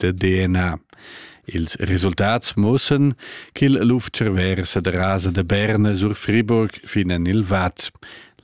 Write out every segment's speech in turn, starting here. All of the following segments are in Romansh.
da DNA. Ils resultats mussen ch'il luf-cerver sederasa da Berne sur Friburg fin en il Vad.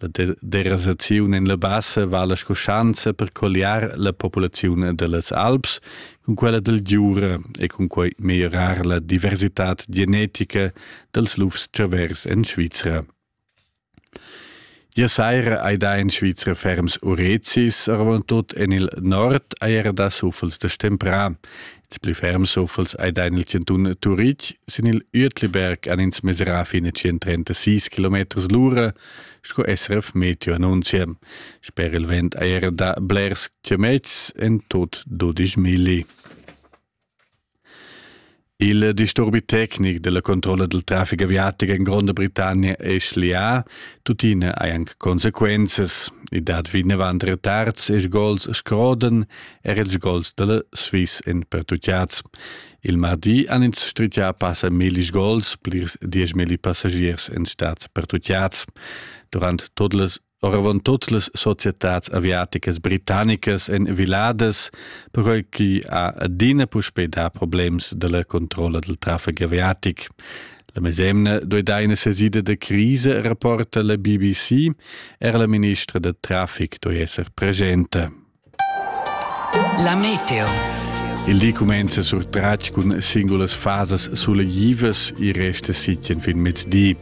La derasaziun en la bassa vala sco schanza per colliar la populaziun dallas Alps cun quella del Giura e cun quei meglierar la diversitad genetica dels lufs-cervers en Svizra. Gia saira ei dà in Svizra ferms urezis, oravontut en il nord ei era dà suffels da stemprà. Ils pli ferms suffels ei dà en il chantun Turitg. Sin il Uetliberg han ins mesurà fin a 136 km l'ura, sco SRF Meteo annunzia. Sper il vent ei era dà blers chametgs, en tut 12 milli. Il disturbi tecnic della controlla del traffic aviatic en Gronda Britannia è schlià, tuttina hai anc consequenzas. I dat vinavant retards e sgols scrodan er ils sgols della Swiss en pertutgads. Il mardi han ins strigià passa milli sgols, plirs dieschmilli passagiers en stads pertutgads. Durant tot las oravant tut las societads aviaticas britannicas en viladas, perquai che ha adina puspè dà problems da la controlla del traffic aviatic. La mesemna doi da ina sesida da crisa, rapporta la BBC, era la ministra da traffic doi esser presenta. La meteo. Il di cumenza surtratg cun singulas fasas sulegivas e resta sitien fin mezdi.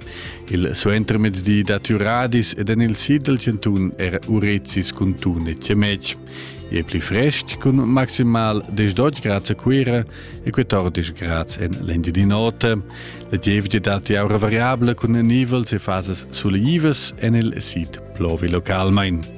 Il suentermezdi dat Uradis ed en il sid del Centun era Urezis cun Tun e Cemec. E pli frest cun maximal 10 grads a Cuira e 14 grads en l'Indi di notte. La gievgia dat aura variabile cun nivels e fasas sulegivas en il sid plovi localmain.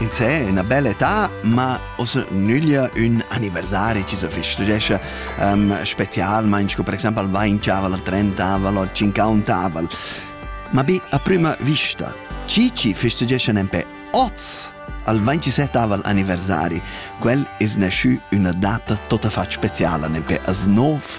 Ins è ina bella età, ma ossa nüglia ün anniversari chi se festeggia um, specialmaing sco per exaimpel il vainchavel, il trentavel o cinquantavel. Ma be a prüma vista, chi chi festeggia nempe oz al 27 anniversari, quel es nascü üna data tota fat speciala, nempe as nov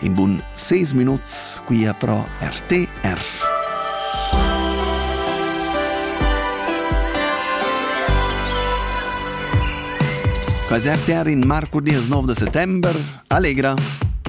in bun 6 minuts qui a pro RTR. Quasi RTR in marco 9 de settembre, Allegra!